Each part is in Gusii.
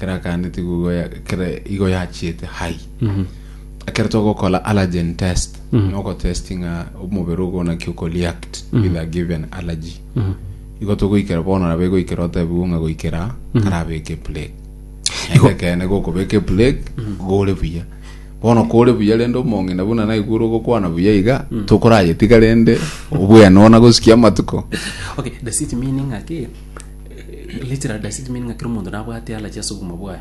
kera kande tigugo ya- kera igo yachiete hai ekero togokora allergen test nogotesti ng'a omobere ogo naki okoreact with a given allergy igo togoikera bono nabo egoikera otebigwe ng'a goikera karabeke plague naende ekene gokobeka eplague gore buya bono kore buya rende omong'ina buna naigure ogokwana buya iga tokorayetiga rende obwene ona gosikia amatuko Okay, does it mean ng'aki Literal does it mean ng'a kera omonto nabwate allergy ase obogima bwaye?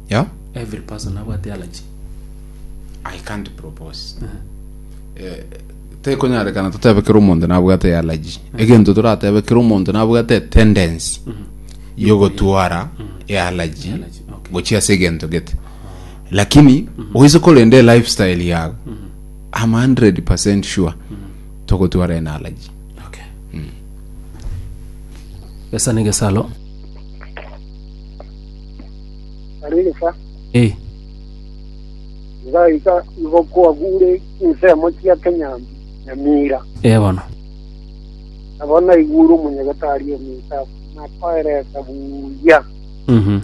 Yeah, Every person nabwate allergy. I can't propose. Eh, tekonyarekana totebe kera omonto nabwate allergy. Egento toratebe kera omonto nabwate tendency yogotwara allergy Allergy, okay. gochia ase egento gete. Lakini oise korende lifestyle yago. I'm 100% sure togotwara en allergy. Okay. Gesa negesaro. Ari gesa. Eh. Gaika igo kwagure insemo chia Kenya nyamira. Eh bono. Abona iguru munyagatari omita na paire kabuya. Mhm.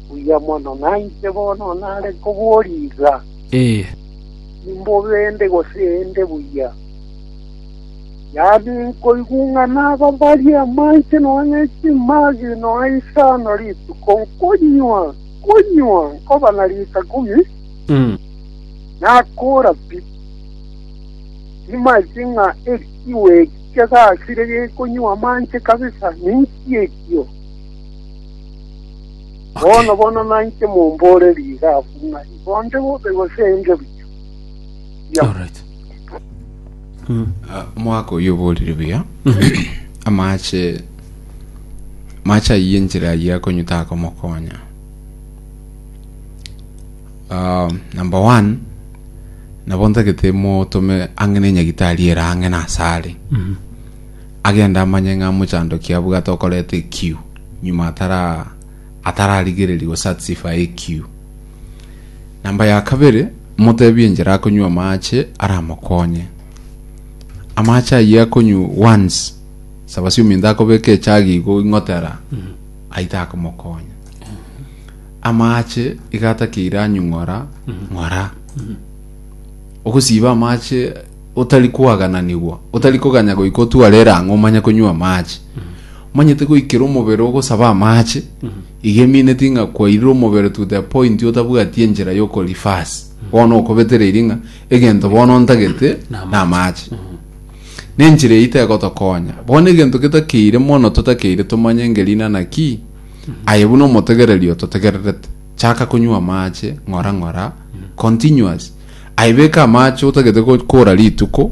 Buya mono naite bono nare koboriga. Eh. Nimbo bende gosende buya. Yaani, nkoigung'ana babarie amache nonya chimagi nonya isano rituko, nkonywa, nkonywa, nkoba na lita ikomi, nakoora pi. Timaeti ng'a ekiwe eki kegasire gekonywa amache kabisa, ninki ekio? Bono, bono nainche mombore rigabu ng'a igo nde bobe gose inche buya. Ah, omwaka oyio oborire buya amache mache ayie enchera ayie akonyuta akomokonya Ah, number one nabo ntagete motome ang'e na enyagitari ere ang'e na asare agenda amanye ng'a mochandoki abwate okoreta ekiu nyuma atara atararigereria gosatisfy ekiu namba ya kabere Moteebie enchera akonywe amaache aramokonye. Amaache ayio akonywe once, saba siominto akobeka echagi igo ing'otera, ayio takomokonya. Amaache iga atakeire anyung'ora, ng'ora. Ogosiba amaache otari koagananigwa, otari koganya goika otware erang'o omanye konywa amache. Omanyete goikera omobere ogosaba amache, iga emineti ng'a kwairire omobere to the point otabwati enchera yoko reverse. Bono okobetereiri ng'a egento bono ntagete na amache. Na enchera eyio tegotokonya. Bono egento getakeire mono totakeire tomanye ngerina naki, aye buna omotegereri ototegererete. Chaka konywa amache ng'ora ng'ora, continuous. Aye beka amache otagete go- kora rituko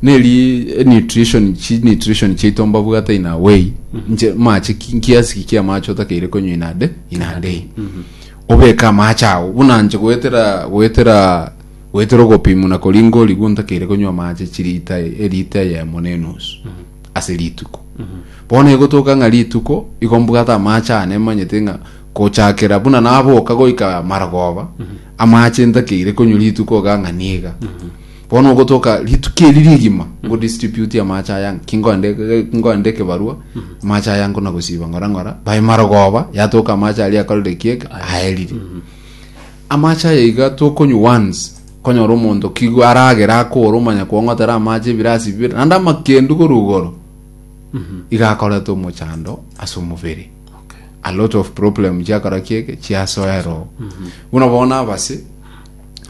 neri nutrition chi nutrition chiaito mbabwate in a way nche mache ki- kiasi ki amache otakeire konywa in a day in a day obeka amache ago buna nche goetera goetera goetera ogopimu na koringa origwo ntakeire konywa amache chirita erita eyemo na enusu ase rituko bono egotoka ng'a rituko igo mbwate amache ane manyete ng'a gochakera buna naboka goika marogoba Amache ntakeire konywa rituko oganga niga bono ogotoka rituko eri rigima ngo distribute amache aya kingoende kingoende ekebarua amache aya nkona gosiba ng'ora ng'ora bae marogoba yatoka amache aria akorire kieke aerire amache aya iga tokonywa once konyora omonto kigo aragere akore omanya kwong'otera amache ebirasi bibere naende amakendu korwa igoro iga akorete omochando ase omobere a lot of problem chiakora kiege chiasoerwa buna bono abase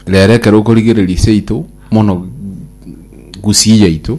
rero ekero okorigereria seito mono gusii yaito